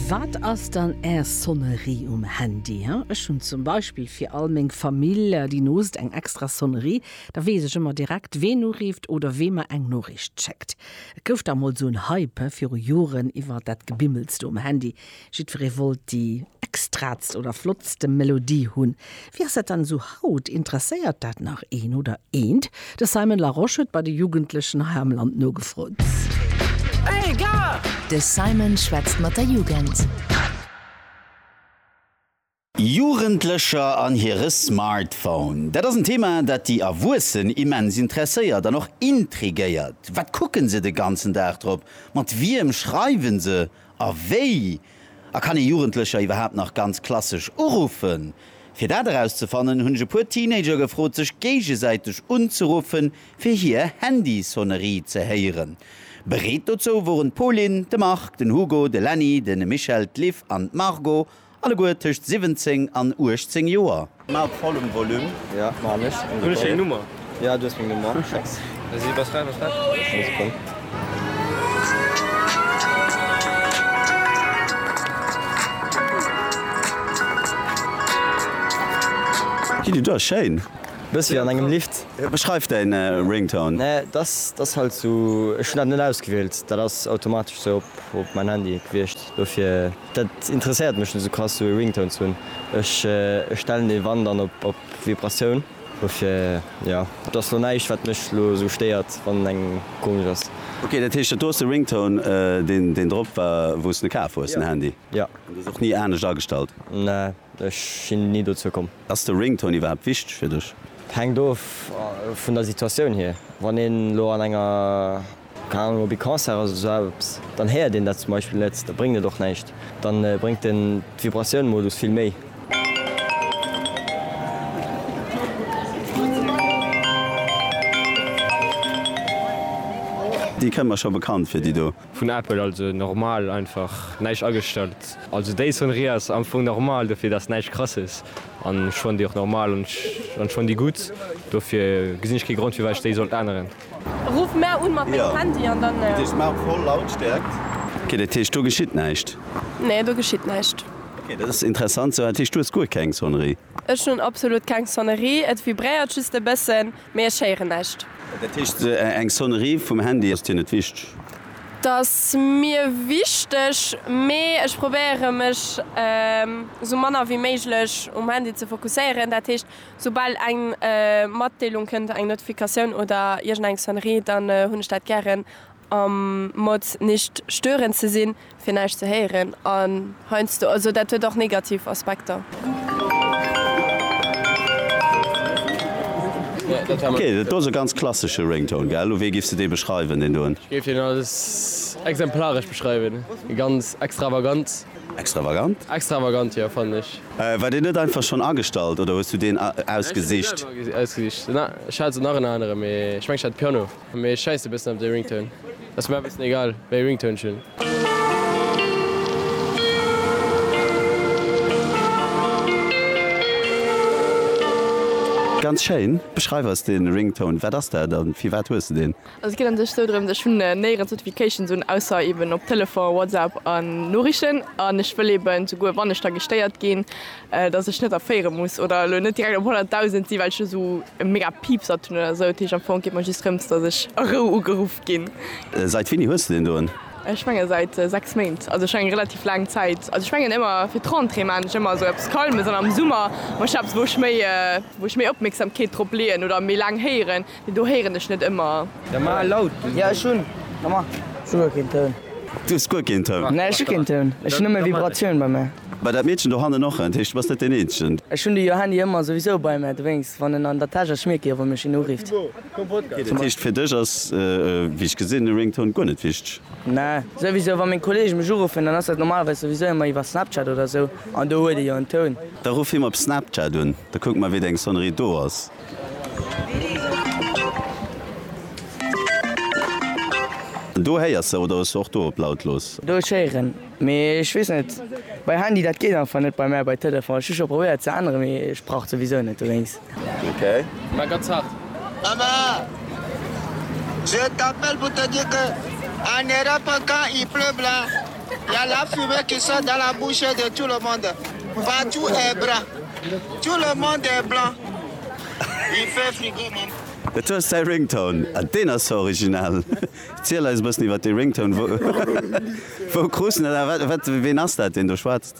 Wat ass dann Är Sonnerie um Handy? Ech hunn zum Beispill fir all meng Famill, déi noost, eng extra Sonnerie. Da weess ech ëmmer direkt, ween urift oder wee mer eng Noriicht schéckt. Et gouf da mol esou en Hype viru Joren iwwer dat Gebimmels do um Handy. Jiddweree wollt déi extraatst oder flottste Melodie hunn. Wéi ass dat dann esou haut? Interesséiert dat nach een oder eent? De Simon Larosche huet bei de Jugendlechen hei am Land nogefrot. De Simon schwätzt mat der Jugend. Jugendlecher an hire Smartphone. Dat ass en Thema, dat déi Erwuessen immens interesséiert an och intrigéiert. Wat kucken se de ganzen Dag drop? Mat wiem schreiwen se? A wéi? A kann ee Jugendlecher iwwerhaapt nach ganz klassesch uruffen? Fir dat erauszefannen, hunn ech e puer Teenager gefrot, sech géigesäiteg unzeruffen, fir hir Handysonnerie ze héieren. Bereet dozou woren d'Pauline, de Marc, den Hugo, de Lenny, de Michel, d'Liv an d'Margot. Alleguer tëscht 17 an 18 Joer. Mar op vollem Volume. Jo man ech. Hun ech deng Nummer? Jo du hues meng Nummer. Hii di do ass schéin. Bëss wéi an engem Lift. Beschreif däin Ringtone. Nee dass dass halt sou, ech hun dat net ausgewielt, dat ass automatesch sou op mäin Handy gewiecht. Dofir, dat interesséiert mech net esou krass esou ee Ringtone ze hunn. Ech stellen dee wann dann op Vibratioun. Dofir jo, et ass lo näischt wat mech lo esou stéiert wann en engem komesch ass. Ok, dat heescht, dat do ass de Ringtone deen drop war wou s de kaf hues, den Handy? Jo. An du hues och ni anescht agestallt? Nee, ech sinn ni dozou komm. Ass de Ringtone iwwerhaapt wichteg fir dech? Hänkt of vun der Situatioun hier. Wann een lo an enger. Keng Ahnung, op ee Concert ass oder sou eppes, dann héiert een dat zum Beispill net, da bréngt et och näischt. Da bréngt en d'Vibratioun-Modus vill méi. Déi kënnt mer scho bekannt vir, déi do. Vun Apple, also normal, einfach näischt agestallt. Also déi Sonnerie ass am Fong normal, dofir dass näischt krasses an ech fannen déi och normal an ech fannen déi gutt, dofir gesinn ech kee Grond firwat ech déi sollt änneren. Ruff mär un mat mengem Handy an dann. Ok, dat heescht do geschitt näischt? Nee, do geschitt näischt. Ok, dat ass interessant. Sou, dat heescht du hues guer keng Sonnerie? Ech hunn absolut keng Sonnerie. Et vibréiert just e bëssen, mee ech héieren näischt. Dat heescht, eng Sonnerie vum Handy ass dir net wichteg? Dat ass mir wichteg, mee ech probéiere mech sou manner wéi méiglech um Handy ze fokusséieren. Dat heescht. Soubal eng Matdeelung kënnt, eng Notifikatioun oder iergendeng Sonnerie, dann hunn ech dat gären am Mode nicht stören ze sinn, fir näischt ze héieren. An heiansdo, also dat huet och negativ Aspekter. Ok, dat do ass e ganz klassesche Ringtone, gell? Wéi giffs de dee beschreiwen, deen doen? Ech géif deen als exemplaresch beschreiwen, ganz extravagant. Extravagant? Extravagant, jo, fannen ech. War deen net einfach schonn agestallt oder hues du deen ausgesicht? Ech hu se selwer ausgesicht. Ech hat se nach en anere mee ech mengen ech hat Piano. Mee ech schäissen e bëssen op dee Ringtone. Ass mer e bëssen egal wéi ee Ringtone ech hunn. Ganz schéin. Beschreif eis dee Ringtone. Wat ass dat a firwat hues de deen? Also et geet an sech sou drëms, ech hunn néi rëm d'Notifications un, ausser eben op Telefon, WhatsApp an Noriichten an ech wëll eben souguer wann ech da gestéiert ginn, dass ech net erféiere muss oder elo net direkt op 100.000 sinn, well ech esou e mega Piepsert hunn oder sou. Dat heescht am Fong geet mer just drëms, dass ech a Rou ugeruff ginn. Seit wéini hues de deen doen? Ech menge seit 6 Méint, also schonn eng relativ laang Zäit. Also ech mengen ëmmer fir d'Rentrée maan ech ëmmer sou eppes Calmes an am Summer maan ech eppes wou ech méi wou ech méi Opmierksamkeet drop leeën oder méi laang héieren. Do héieren ech net ëmmer. Da mar laut. Jo ech hun nommar souguer keen Toun. Du hues guer keen Toun? Nee ech hu keen Toun, ech hun nëmme Vibratioun bei mär. Bei dat Meedchen do hannen och? Dat heescht du bass net deen eenzegen. Ech hun de jo Handy ëmmer souwisou bei mär, dowéinst wann en an der Täsch ass schmierkt ee jo wann mech een urifft. Dat heescht fir dech ass wéi ech gesinn de Ringtone guer net wichteg? Nee souwisou wann meng Kollege mech uruffen dann ass dat normalerweis souwisou ëmmer iwwer Snapchat oder sou an do huet ee jo en Toun. Da ruff him op Snapchat un, da kucke mer wéi deng Sonnerie do ass. Do héiers se oder ech och do op lautlos? Do ech héieren, mee ech wees net bei Handy dat geet einfach net bei mär bei Telefon. Ech hu scho probéiert ze änneren, mee ech brauch et souwisou net dowéinst. Hi a la fumée qui sort de la bouche de tout le monde Partout est brun Tout le monde est blanc Il fait frigo maman. Et hues däi Ringtone, ah deen ass jo original. Erziel eis e bëssen iwwert dee Ringtone, wou krus en dat a wat, ween ass dat deen do schwätzt?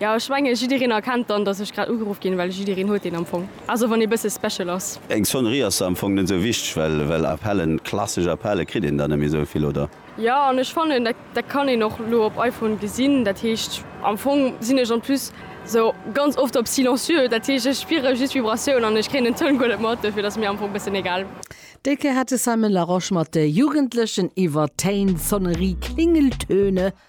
Jo ech mengen jiddereen erkennt dann dass ech grad ugeruff ginn, well jiddereen huet een am Fong, also wann ee bësse special ass. Eng Sonnerie ass am Fong net esou wichteg, well well Appellen, klassesch Appelle kritt een dann net méi esou vill, oder? Jo an ech fannen dat dat kann een och elo op iPhone gesinn, dat heescht am Fong sinn ech en plus esou ganz oft op silencieux, dat heescht ech spiere just Vibratioun an ech kréien den Toun guer net mat, dofir et ass mir am Fong bëssen egal. Déi Kéier hat de Simon Larosche mat de Jugendlechen iwwer d'Téin, Sonnerie, Klingeltöne,